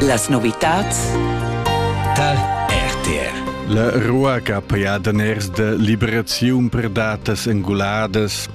Las novitads Tal RTR La rua che ha pajà daners de liberaziun per datas enguladas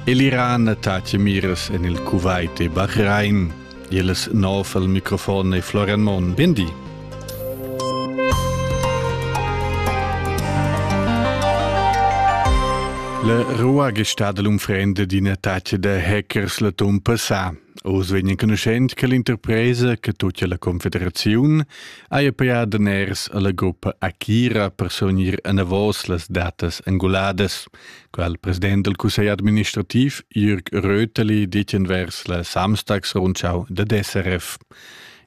e l'Iran attacca miras en il Kuwait e Bahrain. Iles nov al microfon e Florian Mon. Bindi. La rua gestà dell'unfrende d'in attacca de hackers la tum passà. Oz vegn enconuschent che l'interpresa che tutga la confederaziun haja pià daners alla gruppa Akira per sonir enavos las datas angoladas, qual il president del cussegl administrativ Jürg Röteli dit envers la Samstagsrundschau der SRF.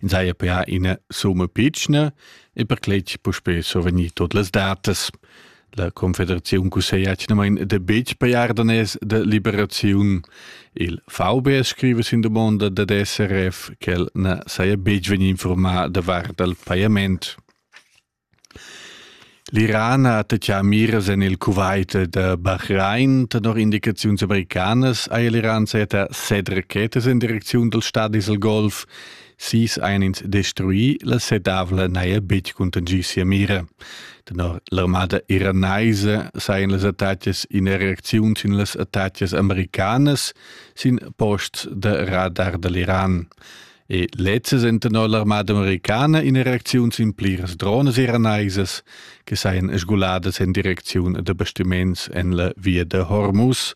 In saja pià ina summa pitschna e per cletg puspè so vegnir tot las datas. La Confederaziun cusseglia atgnamain da betg pajar daners da liberaziun. Il VB scriva sin domanda dad SRF ch'el na saja betg vegnì informaà davart dal pajament. L'Iran ha attatgà miras en il Kuwait da Bahrain. Tenor indicaziuns americanas ha l'Iran sajettà set rachetas in direcziun dal stadi dal Golf. Sis ein ins destrui, la sedavla n'haja betg cuntanschì sia mira. Tenor l'armada iranaisa sajan las attacas ina reacziun sin las attacas americanas sin posts da radar da l'Iran. E lezza sind tenor l'armada americana in reacziun sin pliras drones iranaisas che sajan sguladas en direcziun da bastiments en la via da Hormuz.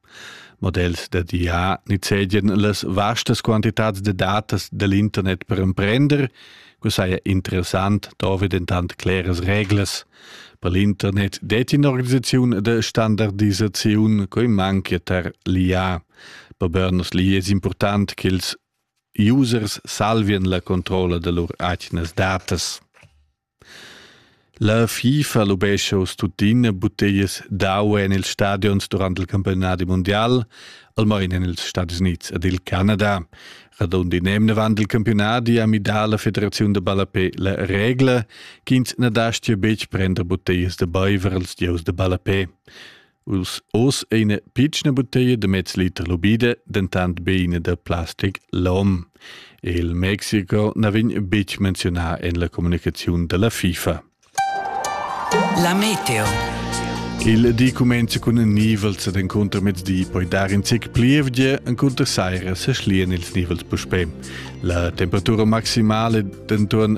Models da DA nizzegian las vastas quantitads da datas dal internet per emprender. Quai saja interessant, dovri dentant cleras reglas. Per l'internet detti in'organisaziun da standardisaziun quai manchia tar l'IA. Per Bernos l'IA è important ch'ils users salvien la controlla da lur atgnas datas. La FIFA lubescha uss tuttina butteglias d'au en ils stadions durant il campiunadi mundial, almain en ils Stadis Unids ed il Canada. Radund in emnavant il campiunadi ha midà la federaziun da ballapé la regla ch'ins na dastia betg prender butteglias da baiver als gieus da ballapé. Oz è ina pitschna butteglia da mez liter lubida, dentant be ina da plastic lom. Il Mexico na vegn betg menziunà en la communicaziun da la FIFA. La meteo. Il di cumenza cun nivels ed encunter mezdi poi dar in zic plievgia, encunter saira sa schlian ils nivels puspè. La temperatura maximale denton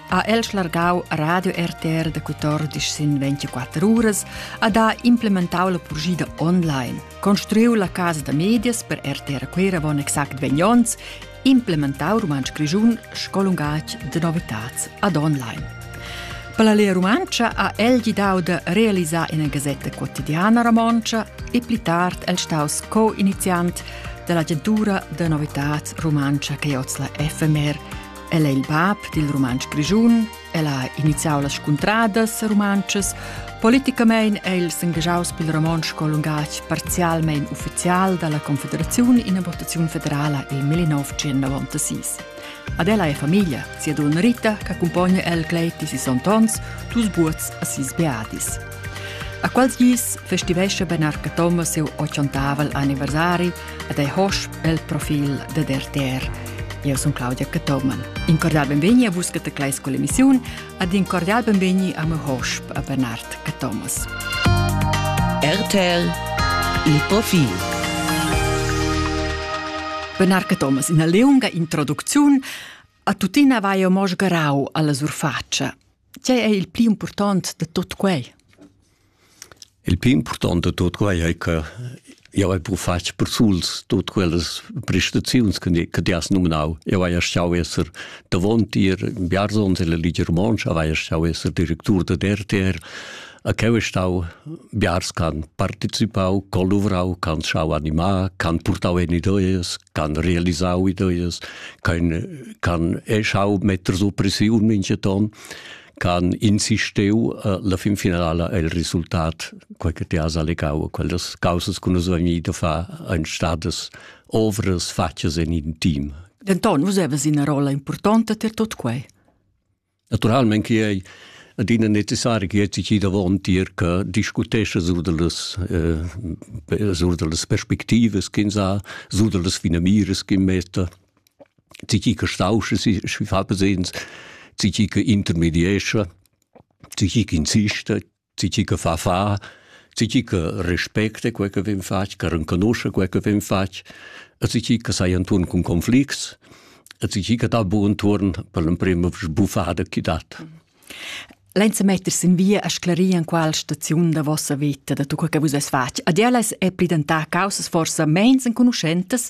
ha el schlargau Radio RTR da 14 sin 24 uras ad ha implementau la purgida online, construiu la casa da medias per RTR Quera von exact 20 onns, implementau Rumantsch Grischun scolungach de novitats ad online. Per la Lea Rumantscha ha el gidau da realisar ina gasetta quotidiana romontscha e pli tard el staus co-iniziant dell'agentura de novitats rumantscha che oz la FMR El è il bab dil rumantsch grischun, el ha iniziau las scuntradas rumantschas. Politicamain è il s'engagiaus pil romontsch lungatg parzialmein ufficial dalla Confederaziun in la votaziun federala il 1996. Ad ella è famiglia, sia donna Rita, che accumpogna el gleiti si sontons, dus buots a sis beadis. A quals gis festivescha Benarca Thomas siu ochontavel anniversari ed ei hosch el profil dad RTR. Eu sun Claudia Cathoman. In cordial benvegni a vus che teclais con l'emissiun ed in cordial benvegni a me hosp a Bernard Cathomas. RTL Il profil Bernard Cathomas, in leunga introducziun a tuttina vai mo sgarau alla surfaccia. Tgei ei il pli impurtont da tut quei? Il pli impurtont da tut quei ei che jau hai pru fatg persuls tut quellas prestaziuns che ti has nominau. Eu hai stau esser davon tier Biarzons e la Ligia Romonsch, hai stau esser directur da RTR, A cheu es stau biars ch'han participau, c'han luvrau, c'han schau animar, c'han purtau en ideas, c'han realisau ideas, c'han eh, schau metter so pressiun minchaton, c'han insistiu eh, la fin finala el resultat, quei che ti has allegau, quellas causas che nus vegnir da far ein stadas ovras fatgas in in team. Denton, vus havas ina rolla importanta per tot quei. Naturalmein che ei adina necessari che ti ci davon tier che discutescha sur dallas eh, sur dallas perspectivas ch'ins ha, sur dallas finamiras che metta, ti ci che stauscha si fa presens, ti ci che intermediescha, ti ci che insista, Ti chi che fa fa, ti chi che respecta quel che vem fatg, che renconosce quel che vem fatg, e ti chi che sai inturn cun conflicts, e ti chi che dà buon turn per l'emprema sbuffada chi dat. Lenza meters in via a sclarir an qual staziun da vossa vita da tu che vus es fatg. Ad ellas è pridentà causas forsa mens enconuschentas,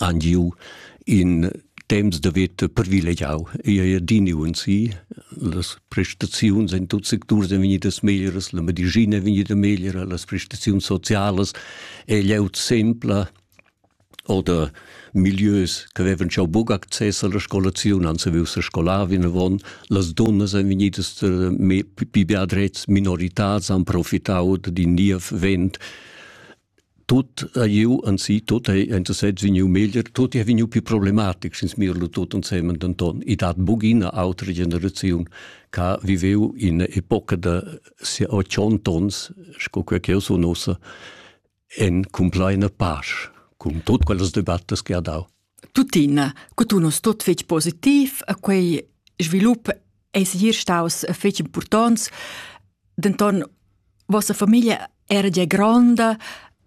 han giu in temps da veta privilegiau e ei adini unsi. Las prestaziuns en tuts secturs ein vegnidas meglieras, la medischina è vegnida megliera, las prestaziuns socialas ei glieud sempla oder milieus che avevan schon buc access alla scolazione, han saviu se scolar vinavon, las donnas ein vegnidas eh, più beadrets, minoritars, han profitau da in niev vent tut ha iu anzi tut ei enta sez vegniu meglier tut ei vegniu più problematic sin smirlo tut ensemen denton i dat bugina autra generaziun che viveu in epoca da se 80 ons sco quel che so nosa en complaina pasch cum tut quellas debattas che ha dau Tuttina, co tu non stot fetg positiv a quei svilup ei segir staus fetg impurtonts, denton vossa famiglia era gia gronda,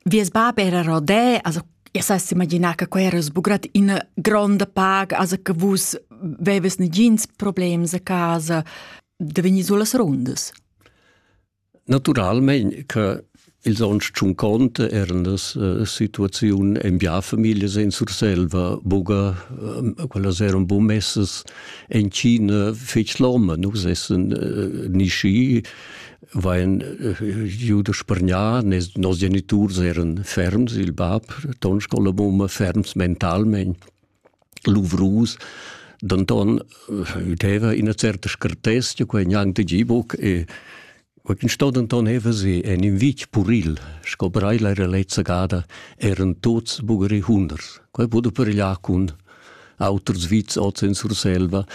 vies bab era rodè, also Ihr seist imaginar che quei era sbugrat ina gronda pag, also che vus veves negins problems a casa da vegnir sulas rundas. Naturalmein che ils onns tschunconta eran las eh, situaziun en bia familias en Surselva buca eh, quellas eran buca messas en China fetg loma nus essen eh, nischi vain juda spargnà nos geniturs eran ferms il bab ton scola mumma ferms mentalment luvrus, denton udeva ina certa scartezia, quei gnanc tgi buc e quei sto denton heva se en in vitg puril, sco breila era lezza gada, eran tuts bugeri hunders. Quei pudo peregliar cun auters vits oz en Surselva.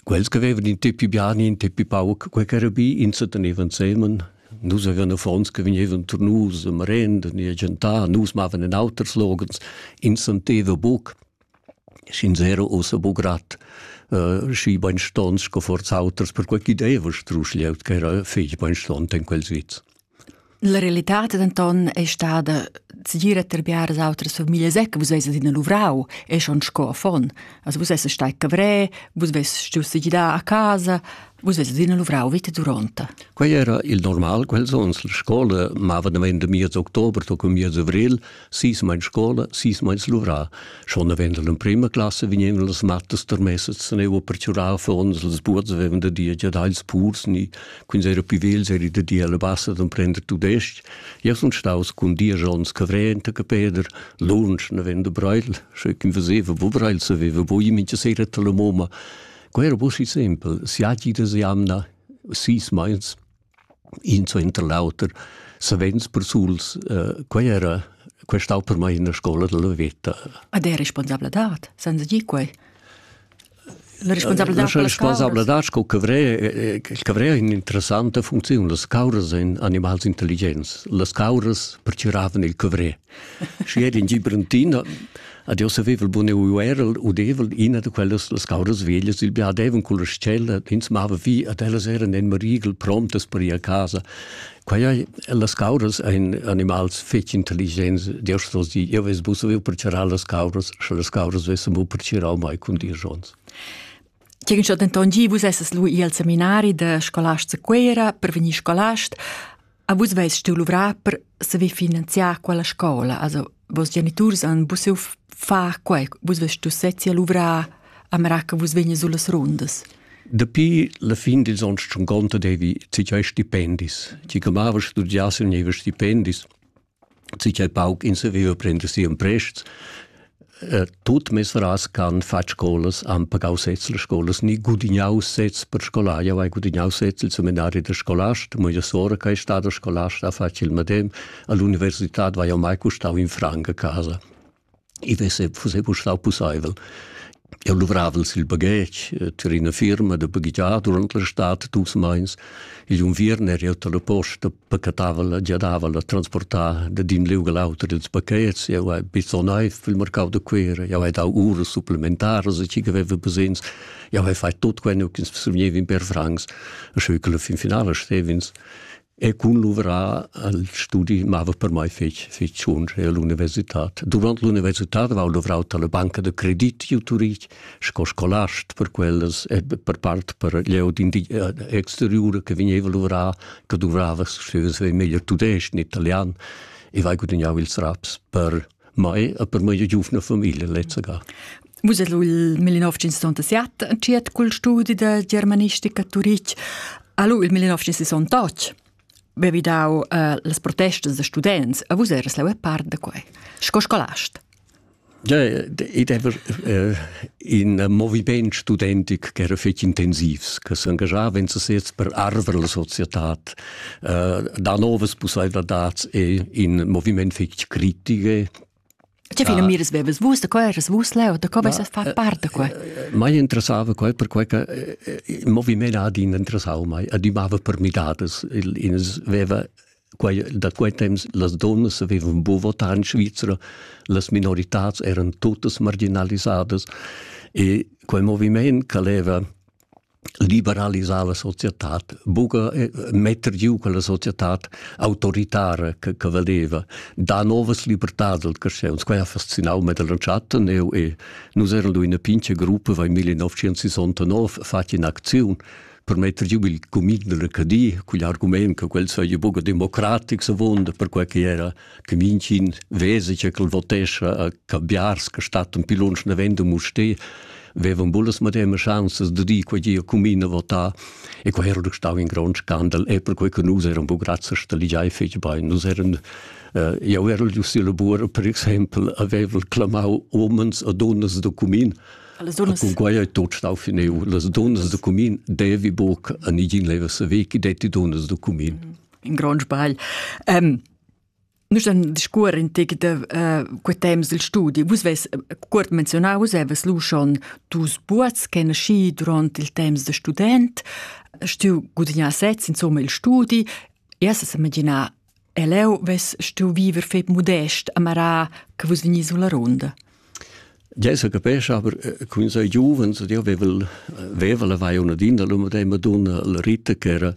Quels che avevan in tipi biani, in tipi pauc, quei che era bi, insa tenevan semen Nus avevan affons che vegnevan turnus e marenda ni a gentar, nus mavan en auters loghens, ins senteva buc, sch'ins era ussa buc grad uh, schi beinstons sco forz auters, perquei ch'i deva strusch glieud che era fetg beinstont en quel sviz. La realità denton è stada tgir a terbiar as autras famiglias che vus eis adina luvrau e schon sco affon. Also vus eis stai cavrè, vus veis stuiu segidar a casa, Vus eis adina luvrau vita duronta. Quei era il normal quels ons. La scola mava da meins de miez october to cum miez avril, sis meins scola, sis meins luvra. Schon avendo l'emprima classe vignevano las mattas termessas, teneva perciurau fons, las buots avevan da dir giadai ils purs, ni quins era più vels eri da dir alla bassa d'emprender tudesc. Ja sun staus cun dieci ons cavrenta che Peder, lunsch avendo breil, sche quin faceva, wo breil saveva, wo i mincha sera alla moma. Quero possi sempel, siagi de jamna, sis meins, in suenter l'auter, savens persuls, uh, quei era quei stau per mai in scola della veta. Ad è responsabladad, senza di quei? La responsabladad La responsabladad sco cavrea cavrea in interessanta funziun. Las cauras ein animals intelligens. Las cauras pertgiravan il cavrea. Schi ed in Gibrantiner ad io saveva il bun eu era udevel ina da quellas las cauras veglias, il biadevan con la scella, ins mava vi ad ellas eran en marigel prontas per ir a casa. Quai las cauras ein animals fetg intelligents, Dios vos di, io ves bu saviu per charar las cauras, sche las cauras vessen bu per chirau mai cun dir jons. Tgegen schon denton gi vus esses lu al seminari da scolast a Cuera per vegnir scolast. A vus veis steu luvrar per saver finanziar quella scola, also vos geniturs han busiu far quei, vus veis steu sezzi a luvrar a mera che vus vegnis sulas rundas. Dapi la fin dils onns schon conta devi tiei stipendis. Ti che mava studiar se nevi stipendis. sicher pauc in seveva prender si un prests. Uh, tut mesras can far scolas han pagau sez las scolas ni gudignau sez per scolar jau hai gudignau sez il seminari da scolast mia sora che è stata scolasta ha fatto il medem all'università vai mai custau in franca a casa I vesse, fusse bu stau pusseivel. Eu luvravel sil baghetg eh, tar ina firma da baghegiar durant la stad dus meins. Igl unviern er eu dalla posta pacatavel la giadavel a transportar da din liug all'auter ils pachets. Eu hai bizzo naiv il mercau da Cuera. Eu hai dau uras supplementaras e chi aveva bisogns. Eu hai fait tot queno ch'ins survgneva in per francs. E scheu che la fin finala stev'ins E cun luvrar al studi mava per mai fetg, fetg zunder e l'universitad. Durant l'universitad avevo luvrau per la banca de credit giu Turich sco scolast per quellas e per part per glieud eh, exteriura che vegneva luvrar, che duvrava, se vegneva meglier tudesc, in italian, e vai gudagnau ils raps per mai a per mai giuvna famiglia lezza ga. Vus ed il 1967 entschiet cul studi da germanistica a Turitg. Allo il 1968 bevi dau uh, las protestas da students, a vus eras leu part da quei. Sco scolast. Ja, ed ever äh, in moviment studentic che era fetg intensivs, che s'engagiava in sesez per arver la società da novas pussaivladads e in moviment fitg critiche Tge fina miras veves vus da co eras vus leu, da co vesas far part da qua? Mai interessava quei perquei che il moviment ha adina interessau mai, adimava per midadas. Ins veva quei, da quei temps las donnas avevan bu votar in Svizzera, las minoritats eran tutas marginalisadas e quei moviment che leva liberalisar la societad, buca eh, metter giu quella societad autoritara che, che vedeva, da novas libertad del crescens. Quei ha fascinau me dell'entschatta, eu e nus eran in una pinche gruppa vai 1969 fatti in aktion per metter giu il comin dell'Acadie, quegl argument che quel sei buca democratic se vonda per quel che era che minchin vesi che quel votescha a cambiars che stat un pilunsch navendo muste vevan bullas madema chanzas de di quei gia cumina votar e quei era stau in grond scandal e per quei che nus eran bu grazie sta ligiai fetg bein nus eran uh, eu ero giusti labor per exempel avevel clamau omens a donnas de cumin Las dunnas. Con quai è tot stau fineu. Las dunnas de cumin devi buc a nigin leva sa vecchi detti dunnas de cumin. Mm -hmm. in grond sbagl. Ähm, Nus han discuor in tic de uh, quei temps il studi. Vus ves cuort menzionau, vus evas lu schon dus buats che nasci durant il temps de student, stiu gudignà sez insomma il studi. Jas es imaginar eleu ves stiu viver fep modest a Marà che vus vegni sulla ronda. Gia sa capescha, aber cun sai giuvens, ed io vevel veva lavai una din da l'um e dei Madonna la Rita ch'era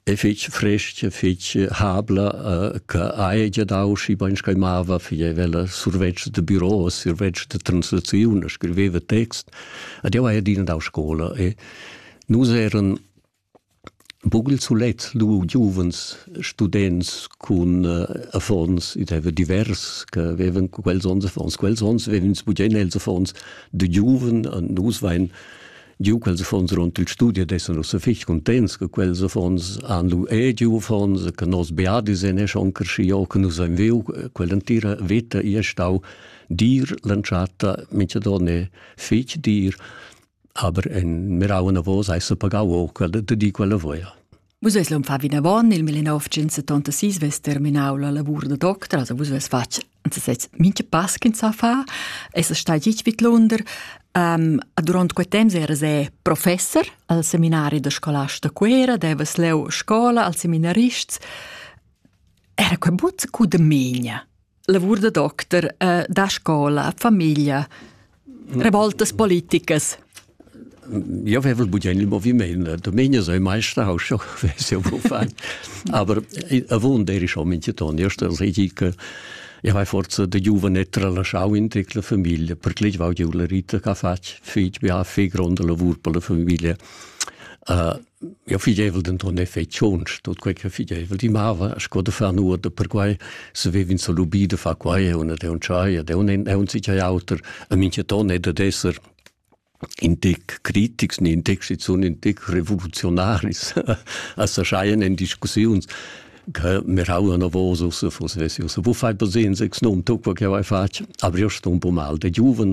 e fitg frestga, fitg habla, che haja gia dau schi bain sco mava, figeva survetsch de bureau, survetsch de translaziun, scriveva text, ed io haja adina dau scola e nus eran Buc il sulet lu giuvens students cun affons, id haveva divers che vevan quels onns affons, quels onns vevan ins bugen els affons da giuven, nus vein giu quels affons duront il studi ed essan ussa fich cuntents che quels affons han lu era giu affons, che nos biadis ein schon creschiu, che nus ein viu. Quell'entira veta ei stau dir l'entschatta mintgadon è fich dir. Aber en mirau anavos hai pagau o quella de di quella voia. Vus eis l'hom fa vinavon il 1976 ves terminau la lavur da doctor, also vus ves fatg anzi sez mincha pass ch'ins sa fa, es stai gitg vid Lunder. Um, durant quei temps era se professor al seminari da scolars da Cuera, devas leu scola als seminarists. Era quei but cu de megna. lavur da doctor eh, da scola, famiglia, revoltas politicas. Ja vevel budien il moviment, Domenica sei Meisterhaus schon, weiß ja wovon. Aber ich wohne der ist in Titon, erst als ich ich habe forza da giovane tralasciau in tutta la famiglia, perché ich war Giulerita che ha fatto figli, ha fatto grande lavoro per la famiglia. Uh, Ja fideivel denton ne fei tschonsch, tot quei che fideivel di mava, sco de far nuot per quei, se vevin so lubi de fa quei, e una de un tschai, e de un en un sich auter, a minche ton è de esser in dic critics, ni in dic schon in dic revolutionaris, a s'erscheien in discussiuns, che me rauan a vos usse fosessi, usse, wo fai per sehen, sechs nom, tu, quel che vai fatg, aber io sto un po mal, de giuven,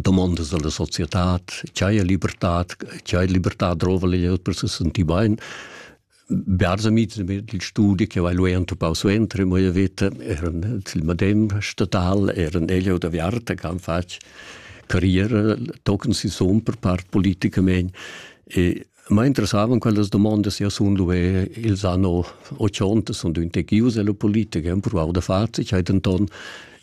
domandas alla societad, ch'haja libertad, ch'haja libertad drova per se sentir bain. Bers amits il studi che vai lui entupau suentri, mo io vita eran il medem statal, eran ella da Viarta che han fatg carriera, tochen si son per part politicamente e Ma interessavan quellas domondas e sun luvè ils anno 80 sun dünte gius e lo politicher han provau da far, cai denton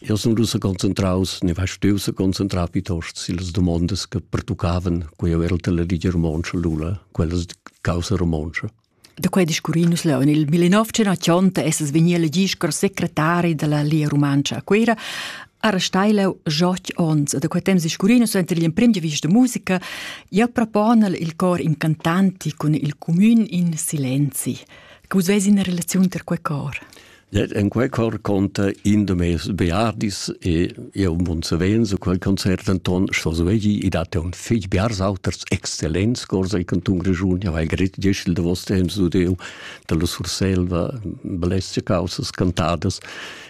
io sun rusa concentraus, ne va steu sa concentrar piuttost sillas domondas che pertuccavan, co io ero la Ligia Romontscha Lula, quellas causa romontscha. Da quei discurri nus leu. Nel 1980 essas vegni elegì sco secretari della Lia Romantscha a Cuera. Era steilau joch ons da quei temps scurino suenter l'emprim di vista musica, ja propona il cor incantanti cun il comün in silenzi. Che vus vesi in relaziun ter quei cor? En quei cor conta in de mes beardis e eu mun savenzo quel concert Anton Schoswegi e date un fig biarsauters excellents corsa il canton Grigiun ja vai grit dieschel de vostre temps du deu da la Surselva blesce causas cantadas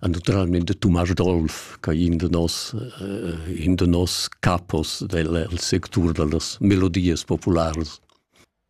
An naturalment de Tumas Dolf, che in de nos, eh, in de nos capos del sectur dellas melodies populares.